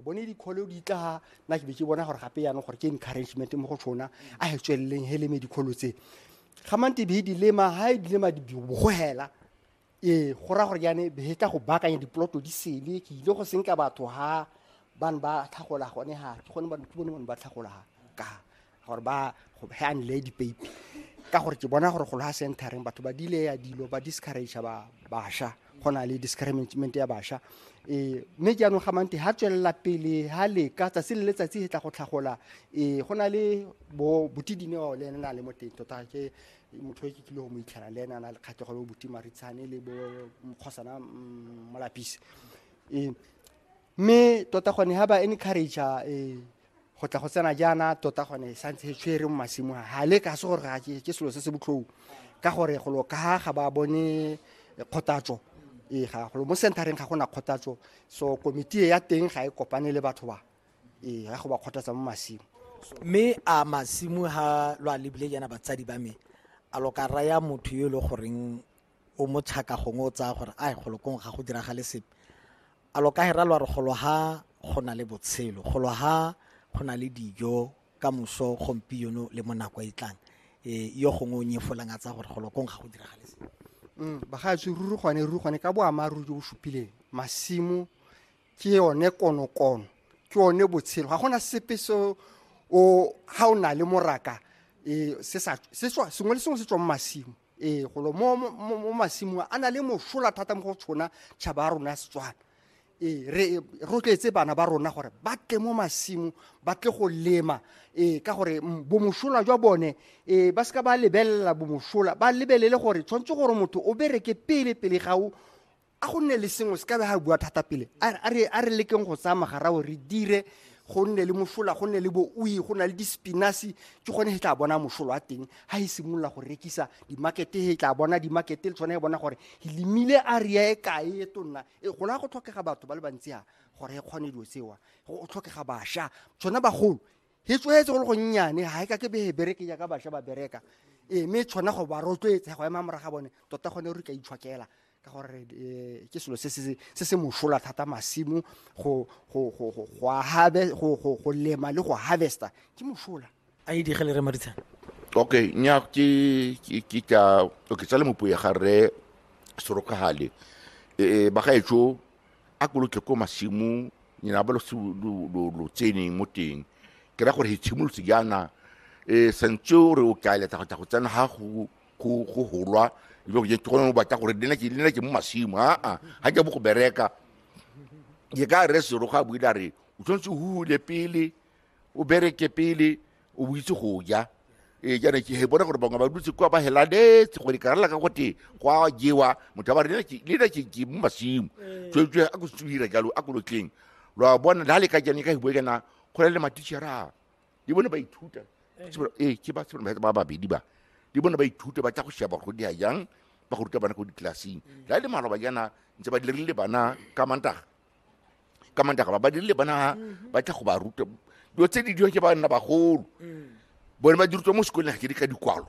bone dikholo di tla nna ke be ke bona gore gape yana gore ke encouragement mo go tshona a he tsweleleng he leme dikholo tse ga mante be di lema ha e di lema di bogogela ee go ra gore yane be tla go bakanya diploto di sele ke ile go senka batho ha bane ba tlhagola gone ha ke gone ke bone bone ba tlhagola ka gore ba he a nle dipeipi ka gore ke bona gore go loga centereng batho ba dile ya dilo ba discourage ba basha go na le discouragement ya basha um mme jaanong ga mante ga tswelela pele ga leka tsatsi le letsatsi e tla go tlhagola um go na le bo botidine bao le ene na le mo teng tota ke motho e ke tlile go mo itlhela le ene a na le kgatlhego le bo buti maritshane le bo mokgosana mm, molapisi um mme tota gone ha ba encourage eh go tla go tsena jaana tota gone sa ntse tshwere mo masimong ha le ka se gore ga ke ke selo se se botlhou ka gore go lo ka ga ba bone kgotatso e ga go mo centereng ga gona kgotatso so komiti ya teng ga e kopane le batho ba e ga go ba kgotatsa mo masimo mme a masimo ha lwa lebile jaana batsadi ba me a lo ka raya motho yo e le goreng o mo tšhaka gongwe o tsaya gore a golo kong ga go diragale sepe a lo ka hera lo re golo ha go na le botshelo golo ha go na le dijo ka moso gompieno le mo nako e tlang e yo gongwe o nyefolang a tsaya gore golo kong ga go diragale sepe mm, bagaetsho ruri gone ruri gone ka boammaaruri jo bo supileng masimo ke yone konokono ke yone botshelo ga gona sepe se o ga o na le moraka e, sengwe le sengwe se tswa mo masimo ee golo mo mo- mo- mo masimong a na le mosola thata mo go tshona tšhaba ya rona ya setswana ee re rotloetse bana ba rona gore ba tle mo masimo ba tle go lema ee ka gore mm, bomosola jwa bone ee ba seka ba lebelela bomosola ba lebelele gore tshwanetse gore motho o bereke pele pele ga o a go nne le sengwe se ka be ga bua thata pele a re lekeng go tsaya magarao re dire go nne le mosola go nne le boui go na le dispinasi ke gone he tla bona mosolo wa teng ga e simolola go rekisa dimakete he tla bona dimakete le tshwane e bona gore e lemile area e kae e tonna e gola go tlhokega batho ba le bantsi a gore e kgone dilo tsewa go tlhokega bašwa tsone bagolo e tswetse go le gonnyane ga e ka ke bee bereke jaaka bašwa ba bereka ee mme tshwana go ba rotloetse go ema moraga bone tota gone re ka itshwakela ka gore eh, ke selo se se mosola thata masimo go lema le go harvesta ke mosola a e digele re maritshana okay nya ke ke tla okay tsale mopuo ya ga rre sorokagale eh, eh bagaetsho a ko lo tle ko masimong nyena ba lo se- lo- lo lo tseneng mo teng ke ra gore he tshimolotse jaana um santse o re o ka eletsa go tla go tsena ga go go go golwa ebe go jete gone o batla gore le nna ke- le nna ke mo masimo aa ga ke bo go bereka ke ka re sero ga buile a re o tshwanetse o hule pele o bereke pele o bo itse go ja ee jaana ke he bona gore bangwe ba dutse kwa ba helanetse gore ka rala ka gote kwa jewa motho a ba re lena ke ke mo masimo tswetswe a ko tswira jalo a kolotleng lwa bona la le ka jane ka hibo kana go na le matishara di bone ba ithuta ee ke ba tsebona ba babedi ba di bone ba ithuta ba tla go sheba go di a jang ba go ruta bana ko ditlelaseng la le maloba jana ntse ba dirile bana ka mantaga ka mandaka ba badiri le bana mhm. ba tla go ba ruta dilo tse di diwa ke ba nna bagolo mm. bone ba dirutwa mo sekoleng ga ke di ka dikwalo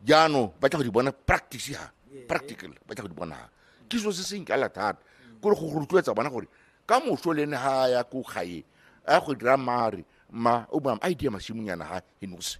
jaanong ba tla go di bona practice ha practical ba tla go di bona ha ke selo se se nkala thata mm. kore go rotloetsa bona gore ka moso le ene ga ya ko gae a go dira mare ma o ba a idea masimonyana ha he nose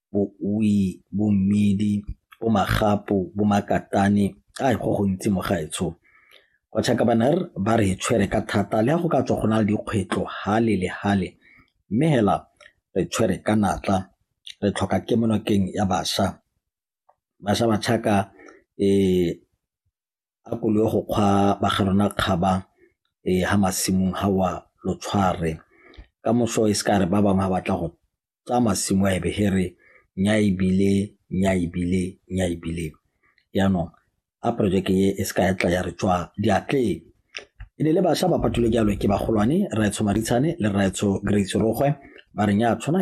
bo-Ui, bo-Mmidi, bo-Magapu, bo-Makatane, ai go gontsi mo gaetsho. Bachakabaner ba re tshwere ka thata le go ka tswa go na le dikgwetlho hale le hale mme hela re tshwere ka natla re tlhoka kemonokeng ya basha basha ba tšhaka um eh, a ko le go kgwa ba ga rona kgaba ha masimong ha wa lo tshware ka moso e se ka re ba bangwe ba batla go tsa masimo a ebe he re nya ebile nya ebile nya ebile yaanong a projeke e e se ka ya tla ya re tswa diatleng e ne le bašwa ba patulwe jalo ke bagolwane raetsho maritshane le raetsho grace rogwe ba re nya tshwana